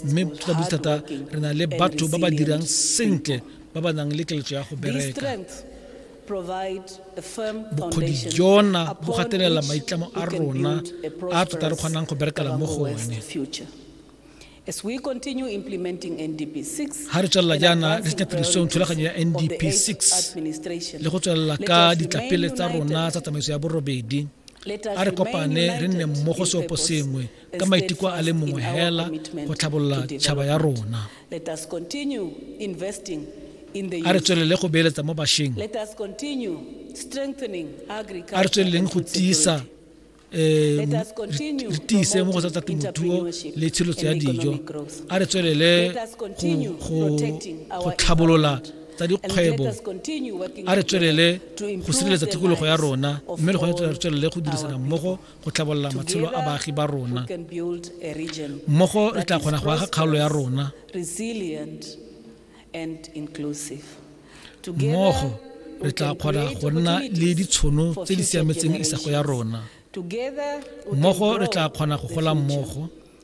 mme ka botse thata re na le batho ba ba dirang sentle ba ba nang le keletso ya go bereka bokgodi jona bo gatelela maitlamo a rona a tota re kgonang go berekela mo go one As we continue implementing NDP 6, ha re tswella jaana re tsenya tirisong thulaganyo ya NDP 6 le go tswella ka ditlapele tsa rona tsa tsamaiso ya borobedi a re kopane re nne mmogo seopo sengwe ka maiteko a le mongwe hela go tlhabolola tšhaba ya rona a re tswelele go beeletsa mo bašweng a re tsweleleng go tiisa um re tiise mo go tsa tsa temothuo le tshilotsho ya dijo a re tswelele go tlhabolola tsa dikgwebo a re tswelele go sireletsa tikologo ya rona mme le gone re tswelele go dirisana mmogo go tlhabolola matshelo a baagi ba rona mmogo re tla kgona go aga kgaolo ya rona mmogo re tla kgona go nna le ditshono tse di siametseng isago ya rona mmogo re tla kgona go gola mmogo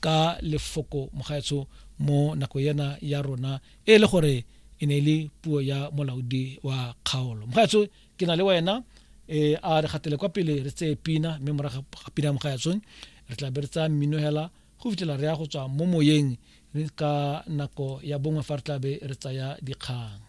ka lefoko mogaetsho mo nako ena ya rona e le gore e ne e le puo ya molaodi wa kgaolo mogaetsho ke na le wena e a re gatele kwa pele re tseye pina mme morago ga pina mogaetsho re tla be re tsaya mmino hela go fitlhela re ya go tswa mo moyeng ka nako ya bongwe fa re tla be re tsaya dikgang